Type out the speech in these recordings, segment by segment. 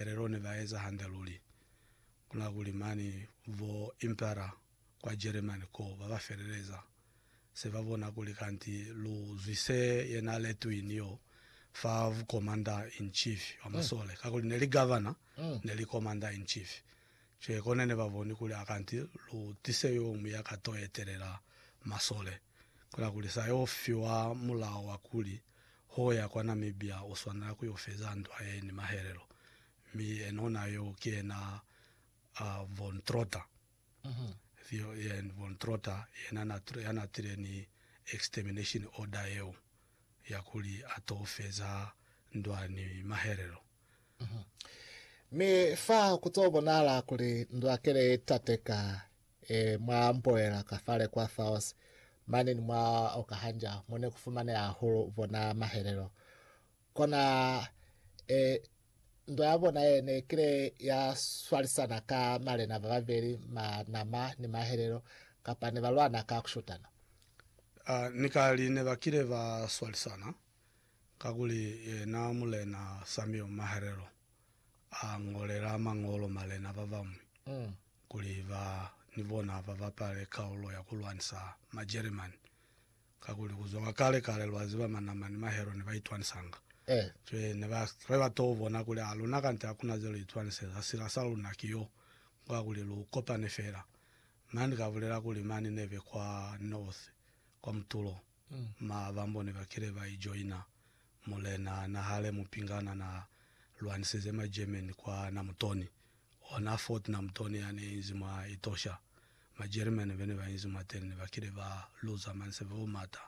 Helelo ne ba eza hande luli. Ku na kuli mane bo impera kwa Jeremani koo ba ba feleleza se ba bona kuli kanti lu zwi se ye n'a letwini y'o fa vu commander in chief wa masole, kakuli ne li governor ne li commander in chief. Cwale kone ne ba boni kuli akanti lu tise yo muñwi ya ka t'o etelela masole. Kola kuli sa yo fiwa mulao wa kuli ho ya kwa Namibia u swanela ku yo feza ndwa ye ni mahelelo, mi enona yo ki yena a Von Trotter, Theo Jan Von Trotter, yena na tr- ya na tile ni extermination order yeo ya kuli a to feza ndwa ni mahelelo. Mi fa ku to bonahala kuli ndwa kele ye tateka e mwa mboela ka fale kwa Thaos, mane ni mwa Okahanja, mo ne ku fumaneha hahulu bona mahelelo. Kona e, ndwa ya bona ye ne kile ya swalisana ka malena ba babeli ma nama ni mahelelo, kapa ne ba lwana ka ku shutana. A, ni kali ne ba kile ba swalisana, Kakuli yena Mulena Samuel Maherero a ngolela mañolo malena ba bañwi kuli ba ni bona ba bapale kaulo ya ku lwanisa Majeremani. Kakuli ku zwa kwa kale-kale lwa ziba Manama ni Mahero ne ba itwanisanga. Cwale ne ba re ba t'o bona kuli a luna kante ha ku na ze lu itwaniseza, sila sa luna ki y'o kwa kuli lu kopane fela. Mani ka bulela kuli mani ne be kwa north, kwa mutulo. Ma bambo ne ba kile ba ijoina mulena na hale mupingana na lwanisize ma German kwa Namutoni, ona Fort Namutoni ya ne inzi mwa Etosha. Ma German bene ba inzi mwateni ne ba kile ba luza manseve o mata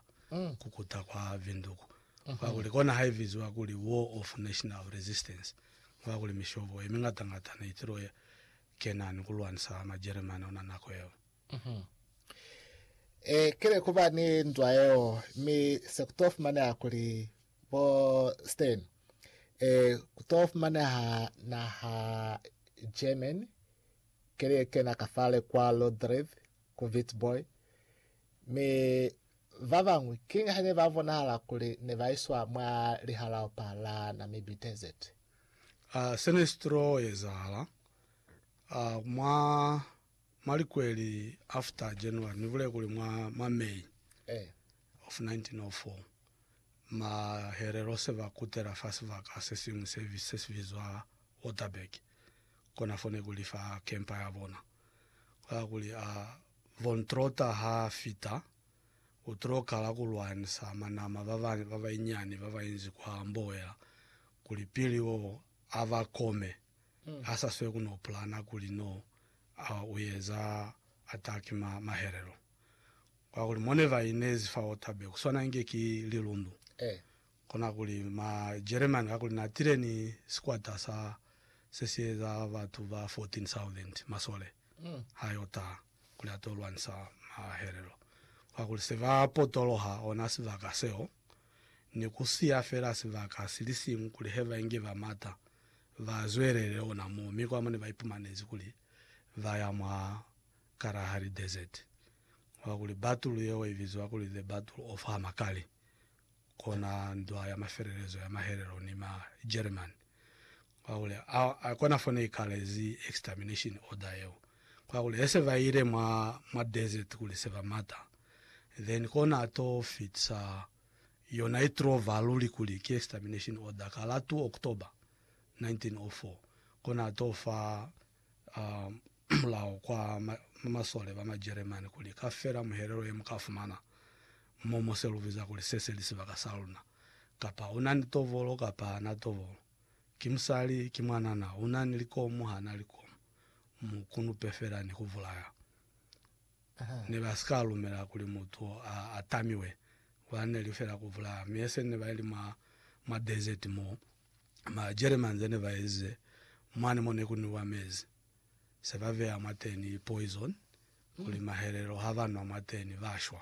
ku kuta kwa Windhoek, kakuli kona ha i biziwa kuli War of National Resistance, kakuli mishobo ye mingata-ngata ne itilwe kena ni ku lwanisa ma German ona nako yeo. E kile ku ba ni ndwa yeo, mi se ku to fumaneha kuli bo Stern e ku to fumaneha naha German ke li kena ka fale kwa Lodreth ku Witbooi, mi ba bañwi kiñi ha ne ba bonahala kuli ne ba iswa mwa Lihalaopa la Namibi Desert. A se ne si to ezahala a mwa Mwa likweli after January, ni bulele kuli mwa mwa May of 1904, Maherero se ba kutela fa sibaka se siñwi se se si bizwa Waterberg, kona fo ne ku li fa kempa ya bona. Ku la kuli a Von Trotter ha fita, u t'o kala ku lwanisa manama ba ba ba ba inyani ba ba inzi kwa Mboela kuli pili o a ba kome. ha sa swe ku no pulana kuli no u eza ataki mwa mahelelo. Kwakuli mo ne ba inezi fa Otabe ku swana inge ki lilundu. Kona kuli ma Jeremani kakuli na tile ni sikwata sa se si eza batu ba 14,000 masole ha yo taha kuli a to lwanisa mahelelo. Kwakuli se ba potoloha ona sibaka seo ni ku siya fela sibaka si li siñwi kuli he ba inge ba mata Ba zwelele ona moo, mi kwa mo ne ba ipumanezi kuli ba ya mwa Kalahari Desert. Kwa kuli battle yeo i bizwa kuli The Battle of Hamakali, kona ndwa ya mafelelezo ya mahelelo ni ma Jeremani. Kwa kuli a, a kona fo ne i kalezi extermination order yeo. Kwa kuli he se ba ile mwa, mwa desert kuli se ba mata, then kona a to fitisa Yona i trova luli kuli ki extermination order ka la 2 October 1904, kona a to fa mulao kwa masole ba Majeremani kuli ka fela muhelelo ye mu ka fumana mo mo se lu biza kuli se se li sibaka sa luna, kapa u na ni tovolo kapa ha na tovolo, ki musali, ki mwanana, u na ni likomu, ha na likomu, mu kunupe fela ni ku bulaya. ne ba si ka lumela kuli mutu a atamiwe, kula ne li fela ku bulaya. Mi eseni ne ba li mwa, mwa desert mo, ma Jeremani ze ne ba ezize, mwani mo ne ku nwiwa mezi, se ba beya mwateni poison, kuli mahelelo ha ba nwa mwateni ba shwa.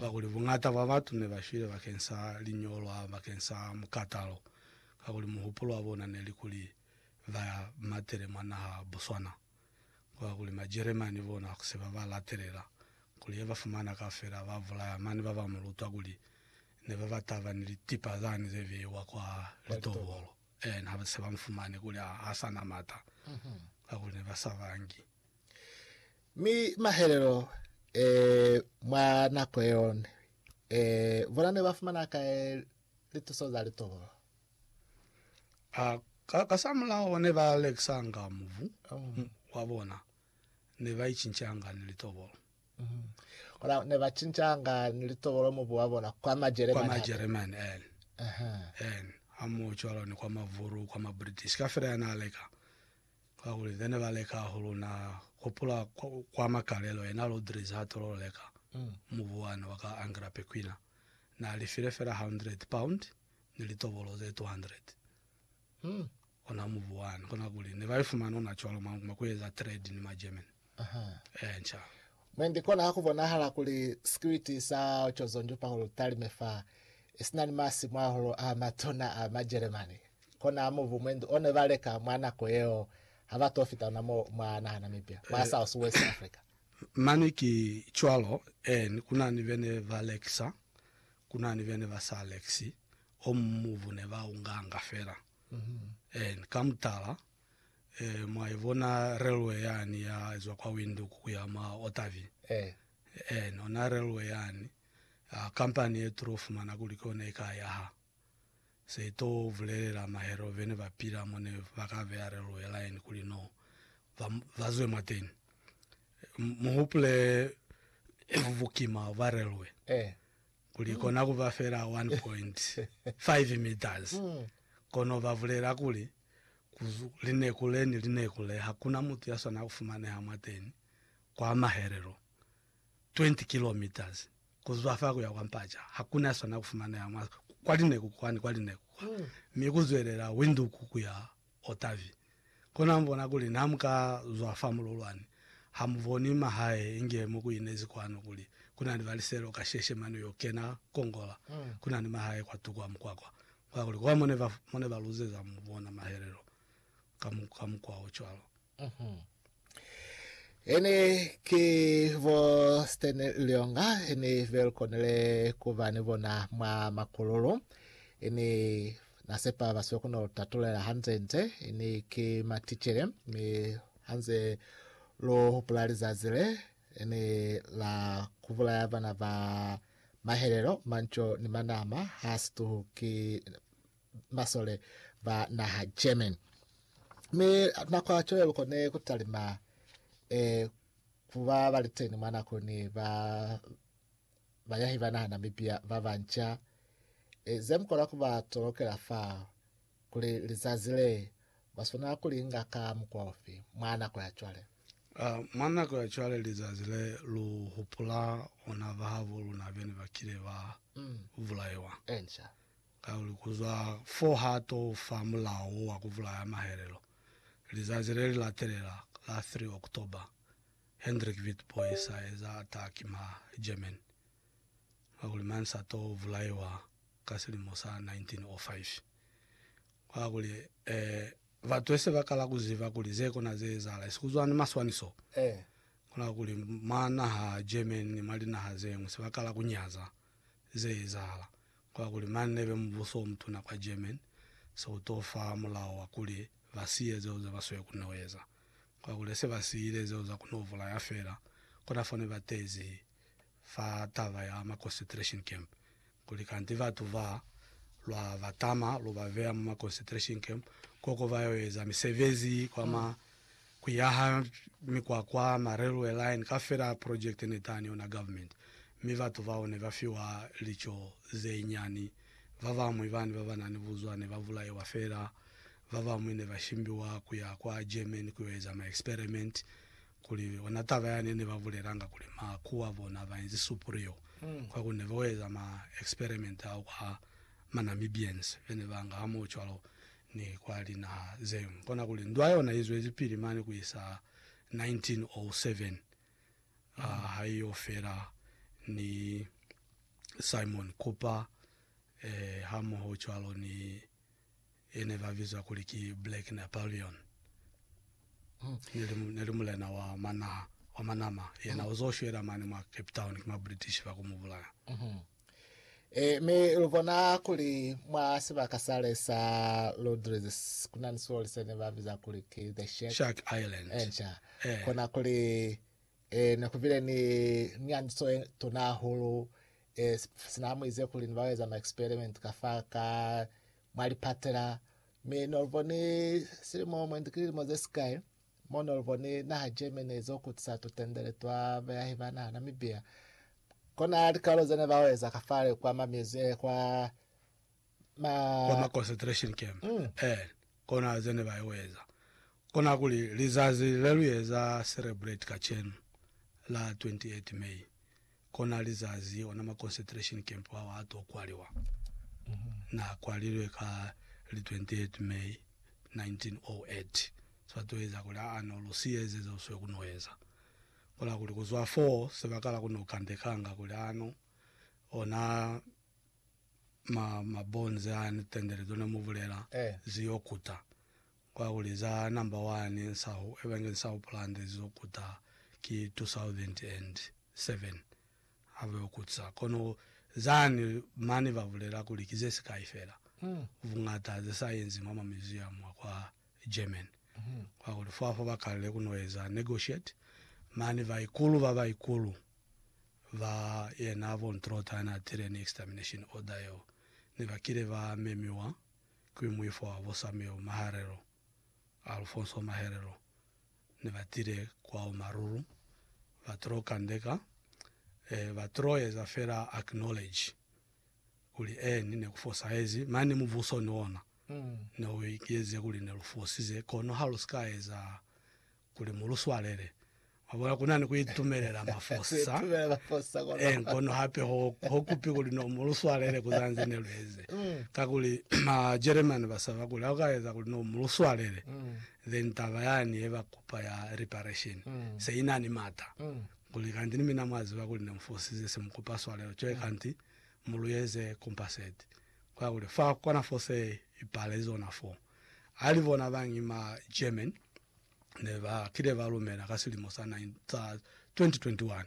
Kakuli buñata bwa batu ne ba shwile bakeng sa liñolwa, bakeng sa mukatalo, kakuli muhupulo wa bona ne li kuli ba matele mwa naha Botswana. kwa kuli Majeremani bona ha ku se ba ba latelela kuli he ba fumana kaufela ba bulaya, mane ba ba mu lutwa kuli ne ba ba taba ni litipa zani ze beiwa kwa litobolo. Eena, ha ba se ba mu fumane kuli ha, ha sa na mata, kakuli ne ba sa bangi. Mi mahelelo e, mwa nako yeo, e, bona ne ba fumana kai lituso za litobolo? A ka kasamulaho ne ba lekisanga mubu wa bona, ne ba icincanga ni litobolo Kono ne ba cincanga ni litobolo mubu wa bona kwa kwa Majeremani. hape. Majeremani en Aha. en hamoho cwalo ni kwa Mavuru, kwa Mabritish kafela ya na leka kakuli ne ba leka hahulu. Na hupula kwa, kwa Makalelo yena Lodriz ha tolo leka mubu wane wa ka Angra Pequina, na lifile fela hundred pound ni litobolo ze 200 mm, ona mubu wani kona kuli ne ba ifumana ona cwalo mwa, mwa kueza trade ni ma German Aha. eh nca Mwendi kona ha kubonahala kuli sikwiti sa Chozonju Paul Talime fa isina ni masimu ahulu a matuna a ma Jeremani, kona mubu mwendi one ba leka mwa nako yeo ha ba to fita ona mo mwa naha Namibia, mwa South West Africa. mani ki cwalo eh ni kuna ni bene ba lekisa Ku na ni bene ba sa lekisi o muñwi bu ne ba u nganga fela. En, ka mutala, eh, mwa ibona relwe yani ya zwa kwa Windhoek ku ya mwa Otavi. En, ona relwe yani, ah, kampani ye tulo fumana kuli ki yona i ka yaha. Se to bulelela mahelo bene ba pila mo ne ba ka beya reluhe laeni kuli no ba, ba zwe mwateni. Mu hupule bukima bwa reluhe kuli i kona ku ba fela 1.5 meters. Kono ba bulela kuli, Ku lineku le ni lineku le, ha ku na mutu ya swana ku fumaneha mwateni kwa mahelelo. 20 kilometres kuzwa fa kuya kwa Mpaca, hakuna swana kufumaneha mwa kwa lineku kwa ni kwa lineku kwa, mi kuzwelela Windhoek kuya Otavi. Kono hamubona kuli na muka zwa fa mululwani, hamuboni mahae inge mo kuinezi kwanu kuli kuna ni baliselo kasheshe mane uyo kena kongola kuna ni mahae kwa tuku ha mukwakwa, kakuli kwa mone ba mone baluzeza mubona mahelelo ka mukwa ocwalo. Ene ki bo Stan Lyonga ni belkonile kuba ni bona mwa makululu. Ini nasepa basibe kona lutatulela hanze nze ini ki maticele mi hanze lo hupula lizazi le ini la kubulaya bana ba mahelelo manco ni manama ha situhu ki masole ba naha German. Mi nako ya cwale lukone kutalima e, kuba baliteni mwa nakoni ba bayahi ba naha Namibia ba banca e, ze mukona kuba tolokela fa kuli lizazi le baswanela kulinga ka mukwa ufi mwa nako ya cwale. Uh, mwa nako ya cwale lizazi le lu hupula ona bahabo luna bene bakile ba mm. bulaiwa. Enca. Kakuli kuzwa fo ha to fa mulao wo wa kubulaya mahelelo, lizazi le li latelela, la 3 October, Hendrik Witbooi sa eza ataki mwa Germany. Kakuli mañi sa to bulaiwa ka silimo sa 1905? Kakuli, ee, batu ese ba kala kuziba kuli ze kona ze ezahala esi kuzwa ni maswaniso. Kono kuli mwa naha Germany ni mwa linaha zeñwi se ba kala kunyaza ze ezahala. Kakuli mane nebe mubuso omutuna kwa German, se uto fa mulao wa kuli basiye zeo zeba swekun'o eza. Kakuli hese basiyile zeo za kun'o bulaya fela, kona fane batezi fa taba ya ma concentration camp, kuli kanti batu ba, lwa ba tama lu ba beya mwa ma concentration camp, koko bayo eza misebezi kwa ma Ku yaha mikwakwa, ma railway line, kafela project ne tani ona government, mi batu bao ne ba fiwa lico ze nyani. Ba bamwi bani ba ba na ni buzwa ne ba bulaiwa fela. Ba bamwi ne ba shimbiwa ku ya kwa Germany ku yo eza ma experiment. Kuli ona taba yani ne ba bulelanga kuli ma ku a bona ba inzi superior kwa ku ne ba yo eza ma experiment ao kwa ma Namibians be ne ba nga hamoho cwalo. ni kwa linaha ze ñwi. Kona kuli ndwa yona i zwelipili mane ku isa 1907 ha i yo fela ni Simon Kuper hamoho cwalo ni ye ne ba bizwa kuli ki Black Napoleon. Ne li, ne li mulena wa manaha wa Manama, yena u zo shwela mane mwa Cape Town ki ma British ba ku mu bulaya. Ee, mi lu bona kuli mwa sibaka sale sa Lodres ku na ni sioli se ne ba biza kuli ki The Shack. Shark Island. Enca. Eh. Kona kuli eh, ne ku bile ni nyandiso ye tuna hahulu eh, si- sina muize kuli ni ba eza ma experiment ka fa ka mwa lipatela mi no lu boni silimo mwendi ki lilimo ze sikai Mo no luboni naha Germany izo kutisa tutendele twa bayahi ba naha Namibia, kona likalo zene ba oeza kafale kwa ma muse, eh, kwa ma, kwa ma concentration camp Mm. eh kona zene ba oeza kona kuli lizazi le lu eza celebrate kacenu la 28 May Kona lizazi ona ma concentration camp ao a to kwaliwa. Na kwalilwe ka li 28 May 1908. Sa to eza kuli, Aa, no lu siya eze zeo swe ku no eza. Kola kuli, ku zwa foo, se ba kala ku no kandekanga kuli, Ano, ona ma, mabonze a ni tendele tona mu bulela, zi yo kuta. Kwakuli za number one nsahu ebenge nsahu pulande zizo kuta ki 2007 haveyo kutsa kono zani mani babulela kuli ki ze sikai fela bungata ze sayenzi mwa ma museum a kwa German kwakuli fo afa bakalile kuno eza negotiate mani baikulu ba baikulu ba yena von Trotter yana atile ni extermination order yeo nebakile ba memiwa Ki muifo wa bo Samuel Maharelo, Alfonso Maherelo, ne ba tile kwao maruru, ba tlo kandeka, eh, ba tlo eza fela acknowledge kuli eh, ni ne ku fosahezi, mane mubuso ni ona ne u ikieze kuli ne lu fosize, kono ha lu si ka eza Kuli mu lu swalele. Mwa bona, ku na ni ku itumelela mafosa, ee, kono hape ho, ho kupi kuli no mu lu swalele ku za nze ne lu eze. Kakuli, Majeremani ba saba kuli ha u ka eza kuli no mu lu swalele, then taba yani ye ba kupa ya reparation se i na ni mata. Kuli, Kanti ni mina mwa ziba kuli ne mu fosize, se mu kupa swalelo. Cwale kanti mu lu eze compensate. Kakuli, fa kona fose i pale zona foo. hali bona ba ngi ma German ne ba kile ba lumela ka silimo sa 2021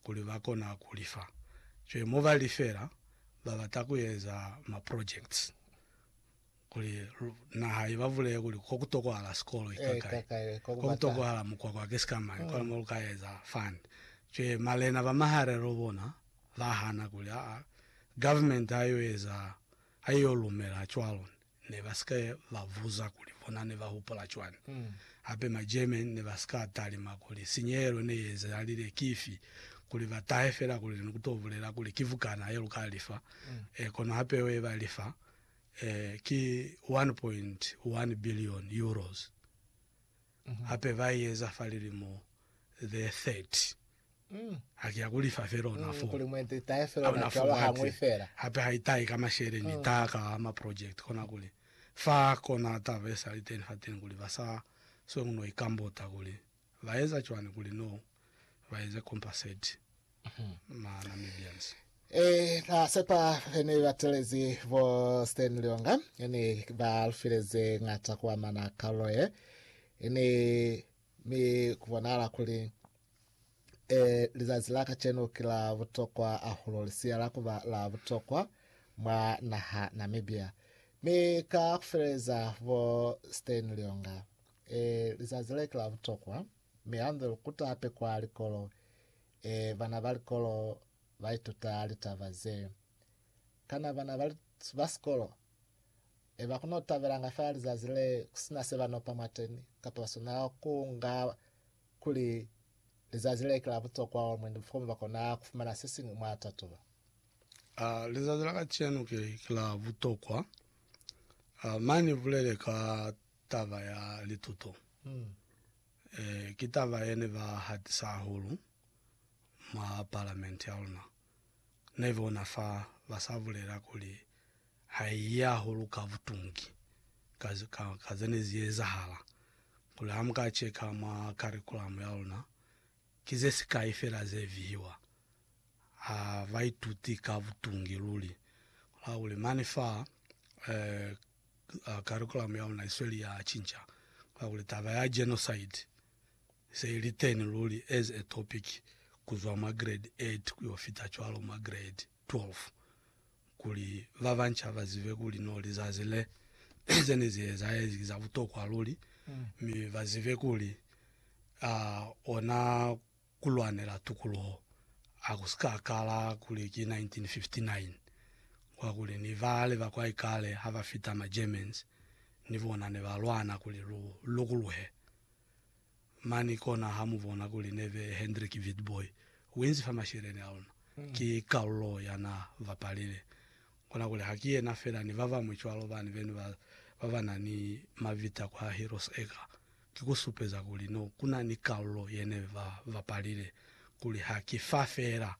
kuli ba kona ku lifa. Cwale mo ba lifela, ba bata ku eza ma projects kuli naha i ba bulele kuli ko ku tokwahala sikolo ki kakai, ko ku tokwahala mukwakwa ki sikamañi, kona mo lu ka eza fund. Cwale malena ba maharelo bona ba hana kuli aa government ha i yo eza, ha i yo lumela cwalo ne. ne ba si ka ba buza kuli bona ne ba hupula cwani. Hape ma German ne ba si ka talima kuli sinyehelo ne i ezahalile ki ifi, kuli ba tahe fela kuli ni ku to bulela kuli ki bukana ye lu ka li fa, e, kono ha peo ye ba li fa, e, ki €1.1 billion. Hape ba i eza fa lilimo ze 30. Mm. Ha ki ya ku lifa fela ona Mm, fo. kuli mwendi itahe fela Hauna ona fo cwalo hañwi mwati. fela. Hape ha itahe ka mashele ni Mm. itaha ka ma project. Kona kuli fa kona taba ye sa li teni fateni kuli ba sa sweng no ikambota kuli ba eza cwani kuli no ba eze compensate ma Namibians. Eh, na sepa he ni batelezi bo Stan Lionga ne ba lu fileze ngata ku amana kalulo ye ne Mi ku bonahala kuli, e, lizazi la kacenu ki la butokwa ahulu, li siyala kuba la butokwa mwa naha Namibia. Mi ka kufeleza bo Steyn Lionga, e, lizazi le ki la butokwa, mi hanze lu kuta hape kwa likolo, e, bana ba likolo ba ituta litaba ze. Kana bana ba, ba sikolo Eba ku no tabelanga fela lizazi le ku si na se ba no pa mwateni, kapa ba swanela ku nga kuli lizazi le ki la butokwa hahulu mwendi fokuba ba kona ku fumana se siñwi mwa tatuba. A Lizazi la kacenu ki ki la butokwa. A Ma ni bulele ka taba ya lituto. E, ki taba ye ne ba hatisa hahulu mwa Palamenti ya luna. Ne bona fa ba sa bulela kuli Haiya hahulu ka butungi ka, ka, ka ze ne zi ezahala, kuli ha mu ka cheka mwa karikulamu ya luna, ki ze sikai fela ze vihiwa. Ha ba ituti ka butungi luli. Kona kuli mane fa, eh, karikulamu ya luna i sweli ya cinca. Kona kuli taba ya genocide i se i li teni luli as a topic ku zwa mwa grade 8 ku yo fita cwalo mwa grade 12. kuli ba banca ba zibe kuli no lizazi le ze ne zi ezahezi ki za butokwa luli, mi ba zibe kuli uh, ona ku lwanela tukuluho ha ku si ka kala kuli ki 1959 kwa kuli ni bale ba kwa ikale ha ba fita ma Germans ni bona ne ba lwana kuli lu lokuluhe. Mani kona ha mu bona kuli nebe Hendrik Witbooi uinzi fa masheleni a ona. Ki kalulo ya na bapalile. Kona kuli ha ki yena fela ni babañwi cwalo bani beni ba ba ba na ni mabita kwa Heroes Acre. Ki ku supeza kuli no kuna ni kalulo ye nebe ba bapalile kuli ha ki fa fela.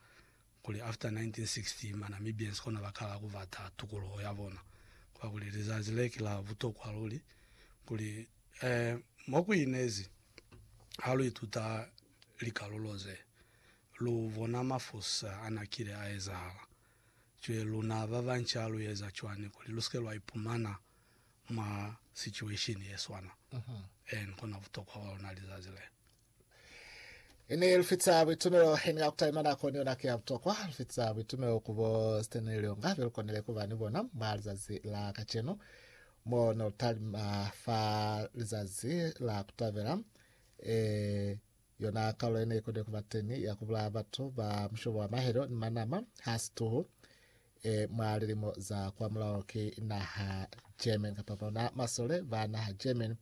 Kuli after 1960 ma Namibians kona ba kala ku bata tukuluho ya bona. Kwa kuli lizazi le ki la butokwa luli. Kuli eh mo ku inezi ha lu ituta likalulo ze, lu bona mafusa a na kile a ezahala. Cwe luna ba banca lu eza cwani kuli lu sike lwa ipumana mwa situation ye swana? En kona butokwa ba luna lizazi le. Ini lufitsa buitumelo ini ya kutaima nako ni yona ke ya butokwa lufitsa buitumelo kubo Stanley Lyonga belukonile kuba ni bona mwa lizazi la kacenu mo no lutalima fa lizazi la kutabela eh, yona kaulo ine ikonile kuba teni ya kubulaya batu ba mushobo wa mahelo ni manama ha situhu eh, mwa lilimo za kwa mulao ke naha German kapa bona masole ba naha German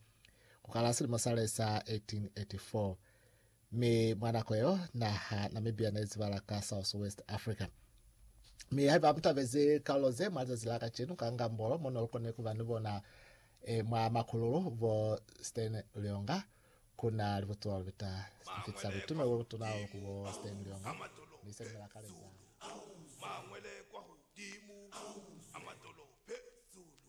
Ku kala silimo sa le sa 1884, mi mwa nako yeo naha Namibia ne izibala ka South West Africa. Mi haiba mu tabezi kaulo ze mwa zazi la kacenu ka Ngambolo mo no koni kuba ni bona e, mwa makululu bo Stan Lyonga, ku na libutuwa lubita lifitisa butume bo butuna bo ku bo Stan Lyonga, mi se ni mela kale za.